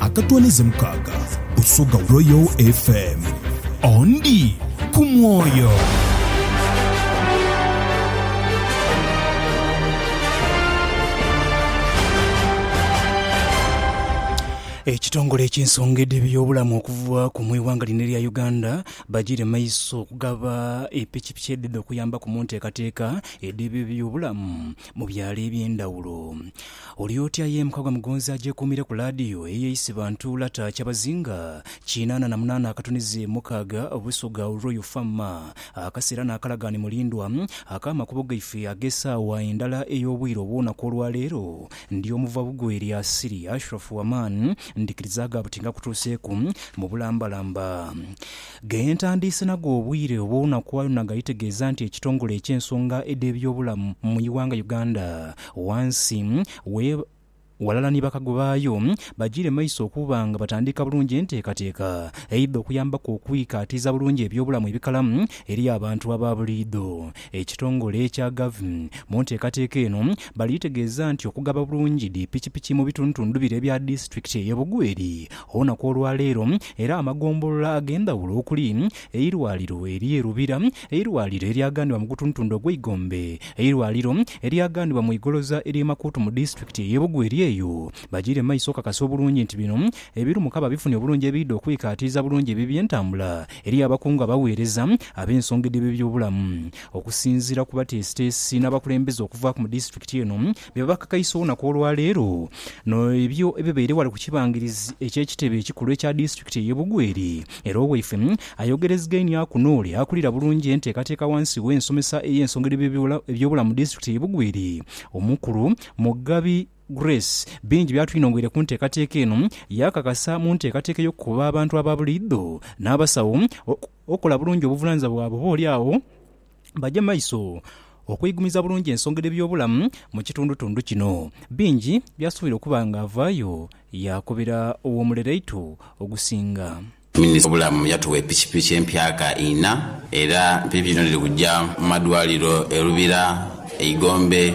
Akatwanize mukaaga osoga Royal FM. Ondi ku mwoyo. Ekitongole eky'ensonga edh'ebyobulamu okuva ku mu ighanga lino erya Uganda bagire maiso okugaba epikipiki edhidha okuyambaku mu nteekateeka edh'ebyobulamu mu byalo eby'endhawulo. Oli otya ye Mukagwa Mugonzi agyekuumire ku laadiyo eyo eisi bantu lata kyabazinga kinaana na munaana akatunizi mukaaga Busoga Royal Fam. Akaseera n'akalagaane mulindwa ak'amakubo gaife ag'esaawa endala ey'obwire obw'onaku olwa leero. Ndi omuva bugwe eri Asili Ashrafu Aman ndhikiriza gha buti ngakutuuseeku mu bulambalamba ge ntandiise nago obwire obw'onaku ayo naghaitegeeza nti ekitongole eky'ensonga edh'ebyobulamu mu ighanga Uganda Wansi we, ghalala ni bakago baayo, bagiire maiso okuba nga batandiika bulungi enteekateeka eidha okuyambaku okwikaatiiza bulungi eby'obulamu ebikalamu eri abantu aba buliidho. Ekitongole ekya gavt mu nteekateeka eno bali tegeeza nti okugaba bulungi dhi pikipiki mu bitundutundu bire ebya disitulikiti eye Bugweri olunaku olwaleero era amagombolola ag'endhawulo okuli eirwaliro erye Lubira Eirwaliro eryaganibwa mu gutundutundu ogw'eigombe, eirwaliro eryaganibwa mu igoloza ery'e Makuutu mu disitulikiti ey'e Bugwe eri eyo. Bajiire mu maiso okukakasa obulungi nti bino ebirumuka babifunye obulungi ebiidha okwikaatiiza bulungi ebibi entambula eri abakungu abaweereza ab'ensonga edh'eby'ebyobulamu. Okusinziira ku bateesiteesi n'abakulembeze okuvaaku mu disitulikiti eno Bye bakakaisa olunaku olwaleero n'ebyo ebibaire ghale ku kibangirizi eky'ekitebe ekikulu ekya disitulikiti ey'e Bugweri era owaife ayogerezegeinhiaku n'ole akulira bulungi enteekateeka ghansi w'ensomesa ey'ensonga edh'eby'ebyobulamu eby'obulamu mu disitulikiti ey'e Bugweri omukulu Mugabi Grace bingi by'atwinhongoire ku nteekateeka eno yaakakasa mu nteekateeka ey'okukoba abantu aba buliidho n'abasawo okukola bulungi obuvunanizibwa bwabwe oba oli agho baje maiso okwigumiza bulungi ensonga dh'ebyobulamu mu kitundutundu kino. Bingi byasuubira okuba nga avaayo yaakobera ow'omulereito ogusinga. Minisita w'ebyobulamu yatuwa epikipiki empyaka ina era epikipiki dhino dhiri kuja mu madwaliro e Lubira, e Igombe,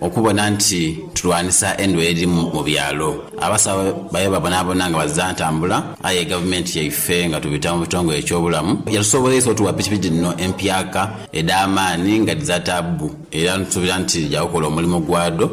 Okubona nti tulwanisa endwaire edhiri mu byalo, abasawo baye babonabona nga baziza ntambula aye gavumenti yaife nga tubita mu bitongole eky'obulamu yatusoboleisa otuwa pikipiki dhino empyaka edh'amaani nga dhiza taabbu era nitusuubira nti dhija kukola omulimo gwadho.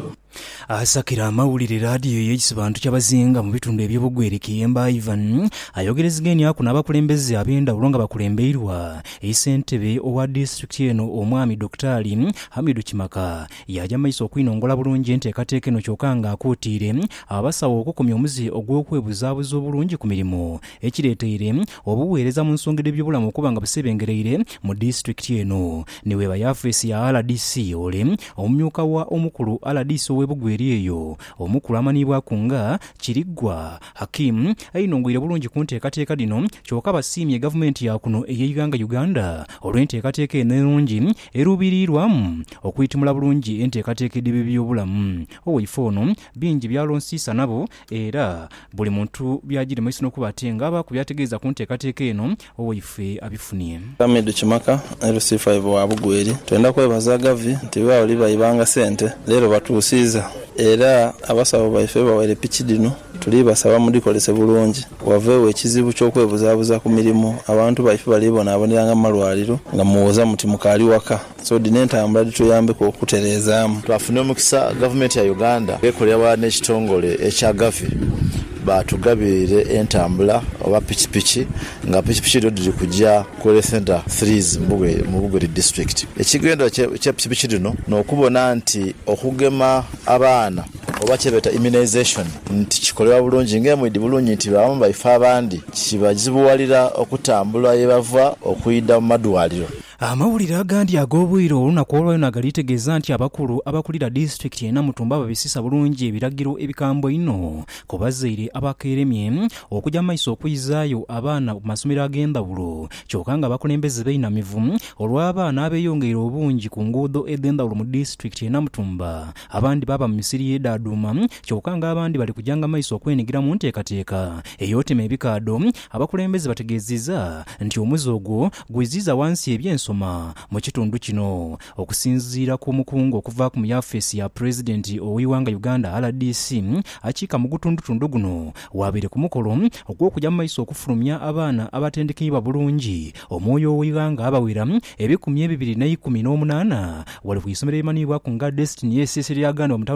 Asakira amawulire laadiyo y'ekibantu Kyabazinga mu bitundu eby'e Bugweri Kiyemba Ivan ayogerezegeniaku n'abakulembeze ab'endhawulo nga bakulembeirwa Eyi Ssentebe owa Disitulikiti eno Omwami Dokitaali Hamidu Kimaka yaaja maiso okwinongola bulungi enteekateeka eno kyoka nga akuutiire abasawo okukomya omuze ogw'okwebuzaabuza obulungi ku mirimu ekireeteire obuweereza mu nsonga edh'ebyobulamu okuba nga busebengereire mu Disitulikiti eno ni bweba yafeesi ya rdc ole Omumyuka wa Omukulu rdc ow'e Bugweri eyo Omukulu amaniibwaku nga Kiriggwa Hakim ainhungwire bulungi ku nteekateeka dhino kyoka basiimye Gavumenti ya kuno ey'eighanga Uganda olw'enteekateeka eno enungi eruubiriirwamu okwitimula bulungi enteekateeka edh'eby'ebyobulamu owaife ono bingi by'alonsiisa nabo era buli muntu by'agirima iso n'okuba ate ng'abaaku by'ategeeza ku nteekateeka eno owaife abifunie. Hamidu Kimaka ni Lusifa Ivo wa Bugweri, Twenda kwebaza Gavi nti gha oli baibanga sente leero batuusiiza era abasawo baife bawere piki dhino tuli basaba mudhikolese bulungi waveegho ekizibu ky'okwebuzabuza ku mirimu abantu baife bali bonaabonera nga mu malwaliro nga muwoza muti mukaali waka. So dhino entambula dhituyambeku okutereezaamu. Twafuna omukisa Gavumenti ya Uganda bwekolera ghalala n'ekitongole ekya Gavi baatugabirire entambula oba pikipiki nga pikipiki dhino dhiri kuja ku Health Centre Threes mu Bugweri District. Ekigendererwa kya pikipiki dhino n'okubona nti okugema abaana oba kyebeeta immunisation nti kikolebwa bulungi nga emwidhi bulungi nti baamu baife abandi kibazibuwalira okutambula ye bava okwidha mu madwaliro. Amawulire agandi ag'obwire olunaku olwa yona gali tegeeza nti abakulu abakulira disitulikiti ye Namutumba babisisa bulungi ebiragiro ebikambwe einho ku bazaire abakeeremye okuja mu maiso okwizaayo abaana ku masomero ag'endhawulo kyoka nga abakulembeze beinamivu olw'abaana abeyongeire obungi ku nguudo edhendhawulo mu disitulikiti ye Namutumba abandi baaba mu misiri ye Daaduma kyoka nga abandi bali kujanga mu maiso okwenhigira mu nteekateeka ey'otema ebikaadho Abakulembeze bategeeziza nti omuze ogwo Gwiziiza wansi eby'ensoma mu kitundu kino. Okusinziira ku mukungu okuva mu yafeesi ya Pulezidenti ow'eighanga Uganda, rdc, akiika mu gutundutundu guno, waabaire ku mukolo ogw'okuja mu maiso okufulumya abaana abatendekeibwa bulungi omwoyo ow'eighanga abawera ebikumi ebibiri n'eikumi n'omunaana ghale ku isomero erimanhibwaku nga Destiny SS eryaganibwa mu